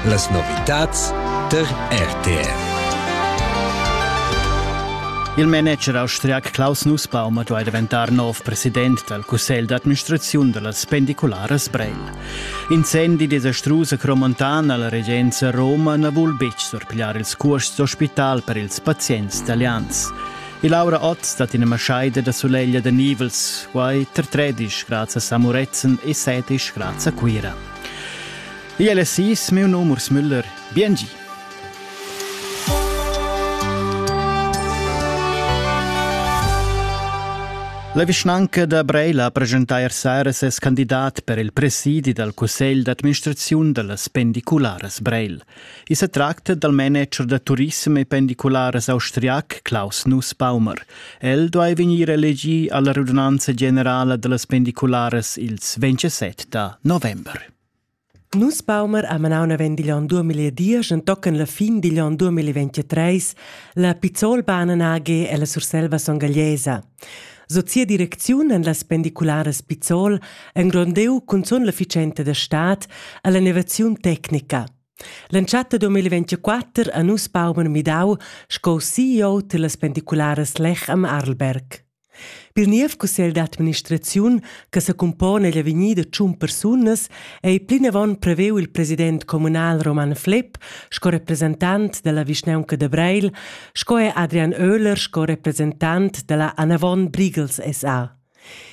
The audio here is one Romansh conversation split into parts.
Las novitads der RTR. Il manager austriac Klaus Nussbaum duai daventar nov president dal cussegl d'administraziun da las pendicularas Breil. Incendi desastrus a Cromontan a la regenza Roma na vul betg surpigliar ils cuosts d'ospital per ils pazients italians. E Laura Ott stat ina maschaida da suleglia da nivels, quai tar 13 grads a Muretzen e 17 grads a Cuira. Igl è sis, meu num Urs Müller. Biengi! La vischnanca da Breila ha presentà ier sera ses candidat per il presidi dal cussegl d'administraziun da las pendicularas Breil. I sa tracta dal manager da turissem e pendicularas austriac Klaus Nussbaumer. El duai vegnir elegì a la radunanza generala da las pendicularas ils 27 da november. Nussbaumer ha manau naven digl onn 2010 en tochen la fin digl onn 2023 la Pizzolbahnen AG ella Surselva songagliesa. Sut sia direcziun en las pendicularas Pizzol engrondeu cunzun l'efficienza da stad a l'enervaziun tecnica. L'entschatta 2024 a nus Baumer Midau sco CEO tillas pendicularas Lech am Arlberg. Pir niev cussegl d'administraziun che secumpona egl avegnir da tschun persunas, ei plinavon preveu il president communal Roman Flepp sco representant dalla vischnaunca da Breil, sco er Adrian Oehler sco representant dalla Anavon Brigels SA.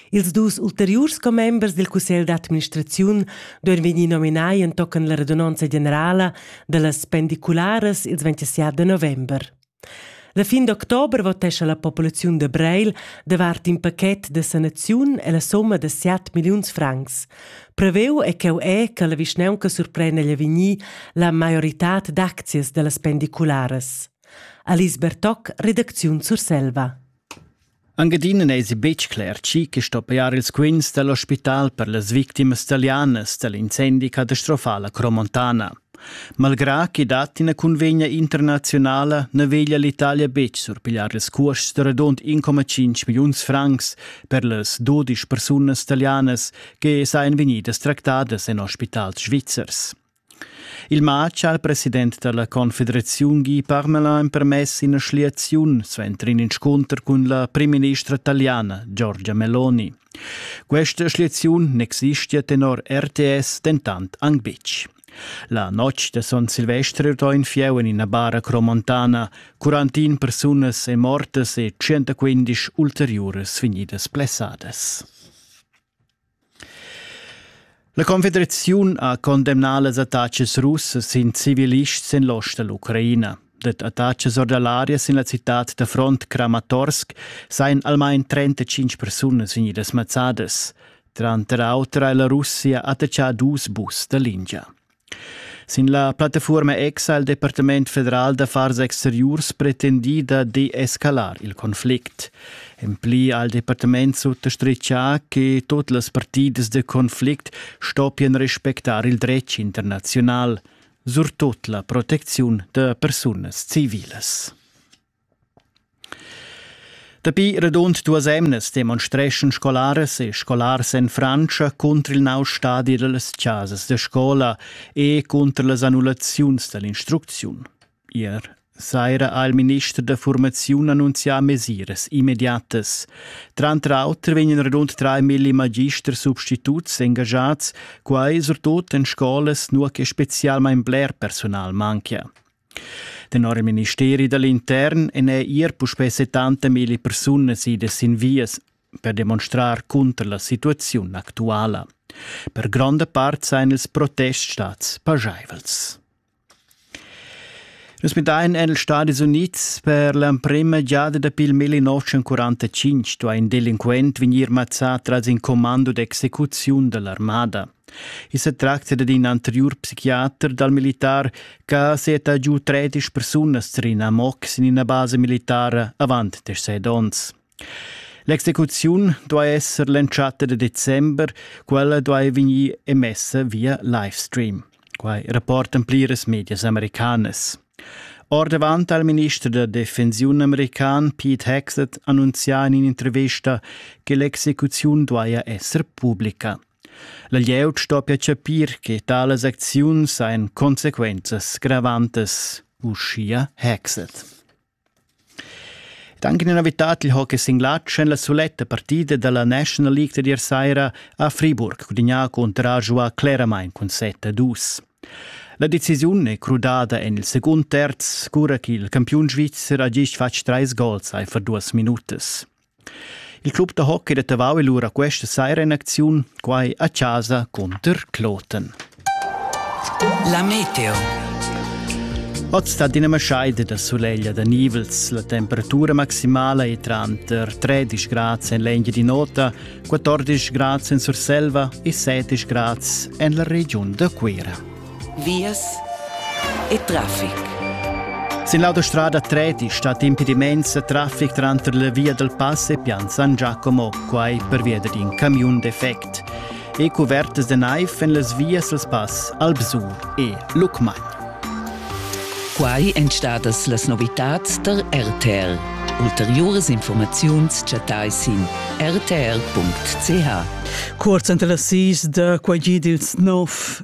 Ils dus ulteriurs commembers dil cussegl d'administraziun duein vegnir nominai entochen la radunonza generala dallas pendicularas ils 27 de november. La fin d'october votescha la populaziun da Breil davart in pachet da sanaziun e la somma da 7 milliuns francs. Preveu è cheu è che la vischnaunca surprenda agl avegnir la maioritad d'aczias dallas pendicularas. Alice Bertoc, redacziun Surselva. Anc adina n'èsi betg cler tgi che sto pajar ils quints da l'ospital per las victimas talianas da l'incendi catastrofal a Cromontana. Malgrà ch'i dat ina cunvegna internaziunala na veglia l'Italia betg surpigliar ils cuosts da radund 1,5 milliuns francs per las 12 persunas talianas che sajan vegnidas tractadas en ospitals svizzers. Il matg al president dalla confederaziun Guy Parmelin ha empermess ina schliaziun suenter in inscunter cun la primministra italiana Giorgia Meloni. Questa schliaziun n'existia tenor RTS dentant anc betg. La notg da Son Silvester ha in fieu en ina bara cromontana, 41 persunas è mortas e 115 ulteriuras vegnidas blessadas. La Confederaziun ha condemnà las attachas russas sin civilists en l'ost da l'Ucraina. Dad attachas or da l'aria sin la citad da front Kramatorsk sajan almain 35 persunas vegnidas mazzadas. Tranter auter ha la Russia attachà dus bus da lingia. Sin la plattafuorma ex ha il Departament federal d'affars exteriurs pretendì da deescalar il conflict. En pli ha il departament suttostrichà che tut las partidas de conflict stoppien respectar il dretg internazional, surtut la protecziun da persunas civilas. Dapi radund duas emnas demonstreschan scolaras e scolars en Frantscha cunter il nov stadi da las chasas da scola e cunter las annullaziuns da l'instrucziun. Ier saira ha il minister da formaziun annunzià mesiras immediatas. Tranter auter vegnan rund 3.000 magister substituts engagiads, quai surtut en scolas nua che spezialmain bler personal manchia. Tenor il ministeri da l'intern èn er puspè 70 milli persunas idas sin vias per demonstrar cunter la situaziun actuala. Per gronda part sajan ils protests stads paschaivels. Nus midain en ils Stati Unids per l'emprima giada dapi il 1945 ha in delinquent vegnir mazzà tras in commando d'execuziun da l'armada. I sa tracta dad in anteriur psichiater dal militar che ha seta giu tredisch persunas tar in amoc sin ina basa militara avant deschet onns. L'execuziun duai esser l'entschatta da december, quella duai vegnir emessa via livestream. Quai rapportan pliras medias americanas. Ordavant al minister da defensiun american Pete Hexet annunzià in intervista che l'execuziun duaja esser pubblica. La glieud stoppia chapir che talas acziuns hajan consequenzas gravantas, uschia Hexet. Anche una novità il hockey singlatsch en la suletta partida della National League da ier saira a Friburg cudegna contra giua claramain cun 7-2. La decisiun è crudada en il secund terz, cura che il campiun svizzer ha gist fatg trais gols for duas minutas. Il club da hockey da Tavau è lura questa saira in acziun, quai a chasa cunter Kloten. La meteo. Oz sta d'ina maschaida da suleglia da nivels. La temperatura maximala è tranter 13 grads en l'Engia di Nota, 14 grads en Surselva e 7 grads en la regiun da Cuira. vias e traffic. Sin l'autostrada 3 stat impediments e traffic tranter la via del Pass e Pian San Giacomo, quai pervia d'in camiun defect. E cuvertas de naiv en las vias del Pass, Albsur e Lucmagn. Quai èn stadas las novitads der RTL. Ulteriores Informaziuns chattai sin rtl.ch. Cuorz entre las sis da quai gid ils nov